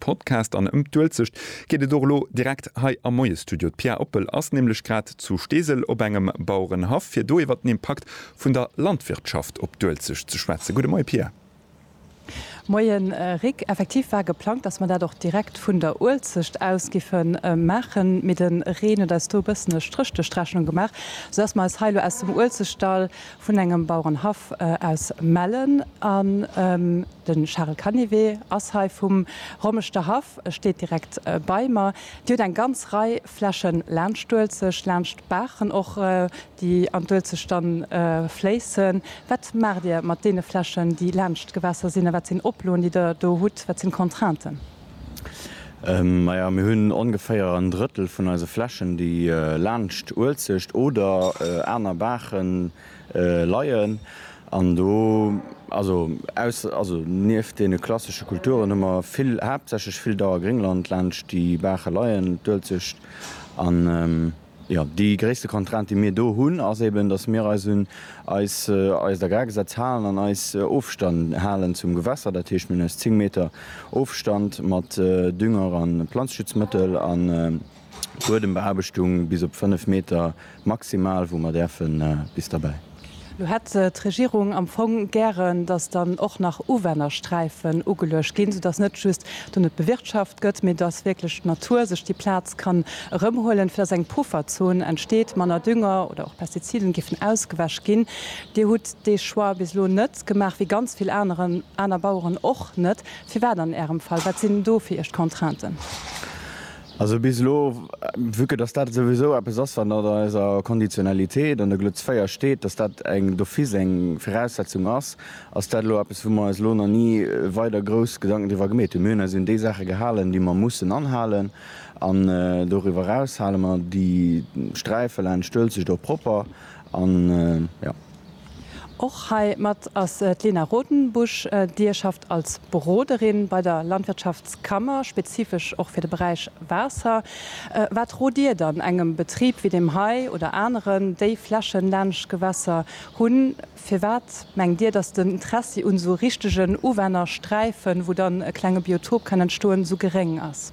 Podcast an ëm d'Uelzecht geet et och elo direkt hei am Moie-Studio. D'Pia Oppel ass nämlech grad zu Steesel op engem Bauerenhaff, fir do iwwer den Impakt vun der Landwirtschaft op d'Uelzecht ze schwätzen. Gudde Moie Pia. Moie Rik. Effektiv war geplangt, datt mer dat och direkt vun der Uelzecht aus géife maachen, mee de Reen huet eis do e bëssen e Stréch duerch d'Rechnung gemaach, soudatt mer eis hei elo aus dem Uelzechtdall vun engem Bauerenhaff aus Mellen an de Charel Canivet ass hei vum Rommeschter Haff, e steet direkt bei mer. Dir hutt eng ganz Rei Flächen laanscht d'Uelzecht, laanscht d'Baachen och, déi an d'Uelzecht dann fléissen. Wat maacht Dir mat deene Flächen, déi laanscht d'Gewässer sinn a wat sinn Oploen, déi Der do hutt, wat sinn d'Contrainten? Maja, mir hunn ongeféier en Drëttel vun eise Flächen, déi laanscht Uelzecht oder aner Baache leien. An do, also aus, also nieft deene klassesche Kulturen hu mer vill, haaptsächlech vill Dauergréngland laanscht déi Baache leien, d'Uelzecht an, Jo, déi gréisste Contrainte, déi mir do hunn, ass eben, dass mir eis un eis eist Agrargesetz halen an eis Ofstand halen zum Gewässer. Dat heescht, mir hunn eis 10 Meter Ofstand mat Dünger a Planzeschutzmëttel a Buedembeaarbechtung bis op 5 Meter maximal, wou mer däerfen bis derbäi. Lo hätt d'Regierung am Fong gären, datt dann och nach Uwännersträifen ugeluecht ginn, soudatt net just do net bewirtschaft gëtt, mee datt wierklech d'Natur sech déi Plaz kann erëmhuelen, fir datt eng Pufferzon entsteet, manner Dünger oder och Pestiziden géifen ausgewäsch ginn. Dir hutt dee Choix bis elo net gemaach, wéi ganz vill aneren, aner Baueren och net. Firwat an Ärem Fall? Wat sinn do fir Iech d'Contrainten? Also bis elo, vue que dass dat souwisou eppes ass, wat mat an eiser Konditionalitéit an der Glutz 4 steet, dass dat eng d'office eng Viraussetzung ass, ass dat elo eppes, wou mer eis elo nach ni weider grouss Gedanken driwwer gemeet hunn. Mir hunn eis un déi Saache gehalen, déi mer mussen anhalen, an doriwwer eraus hale mer déi Sträife laanscht d'Uelzecht och propper an, jo. Och hei mat ass d'Lena Rodenbusch. Dir schafft als Beroderin bei der Landwirtschaftskammer, spezifesch och fir de Beräich Waasser. Wat rot Dir dann engem Betrib wéi deem hei oder aneren, déi Flächen laanscht Gewässer hunn? Firwat mengt Dir, datt den Interessi un esou richtegen Uwännersträifen, wou dann e klenge Biotop kann entstoen, esou geréng ass?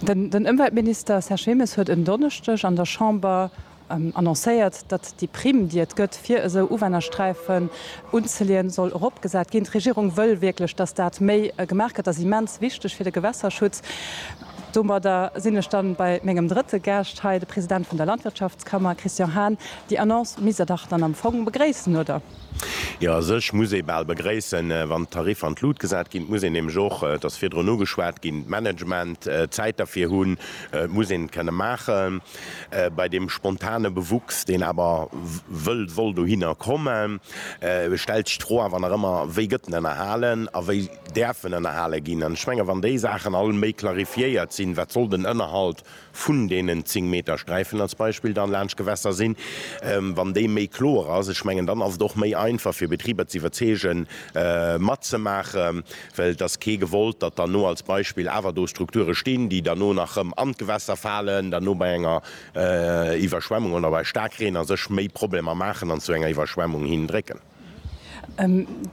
Den Ëmweltminister Serge Wilmes huet en Donneschdeg an der Chamber annoncéiert, datt déi Primm, déi et gëtt, fir esou Uwännersträifen unzeleeën, soll eropgesat ginn. D'Regierung wëll wierklech, datt dat méi gemaach gëtt. Dat ass immens wichteg fir de Gewässerschutz. Domadder sinn ech da bei mengem drëtte Gaascht hei, de President vun der Landwirtschaftskammer Christian Hahn. Déi Annonce misst Der dach dann am Fong begréissen, oder? Jo, a sech muss ee bal begréissen, wann d'Tariffer an d'Lut gesat ginn. Et muss een nämlech och, et ass virdrun ugeschwat ginn, d'Management, d'Zäit derfir hunn. Et muss een et kënne maachen. Bei deem spontane Bewuchs, deen awer wëllt, wollt dohinner kommen, stellt sech d'Fro awer nach ëmmer, Wéi gëtt en ënnerhalen a wéi däerf en ënnerhale ginn? An ech menge wann déi Saachen all méi clarifiéiert sinn, wat soll den Ënnerhalt vun deenen 10 Meter Sträifen als Beispill dann laanscht Gewässer sinn, wann déi méi kloer ass, ech mengen dann ass et och méi einfach fir Betriber ze iwwerzeegen matzemaachen, well et ass kee gewollt, datt derno als Beispill awer do Strukture stinn, déi derno nach rëm an d'Gewässer falen, derno bei enger Iwwerschwemmung oder bei Staarkreen a sech méi Problemer maachen an zu enger Iwwerschwemmung hin drécken.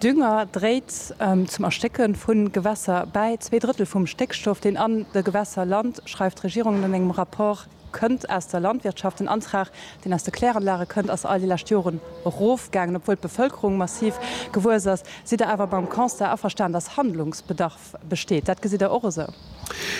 Dünger dréit zum Erstécke vu Gewässer bäi. Zwee Drëttel vum Stéckstoff, deen an de Gewässer lant, schreift d'Regierung an engem Rapport, kënnt aus der Landwirtschaft. Den Antrag, deen aus de Kläranlage kënnt, ass all déi lescht Joren erofgaangen, obwuel d'Bevëlkerung massiv gewuess ass. Sidd Der awer mam Constat averstan, dass Handlungsbedarf besteet? Dat gesitt Der och esou?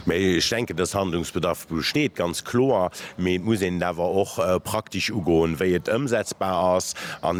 Mä ech denken, dass Handlungsbedarf besteet, ganz kloer. Mee et muss een et awer och praktesch ugoen, wéi et ëmsetzbar ass.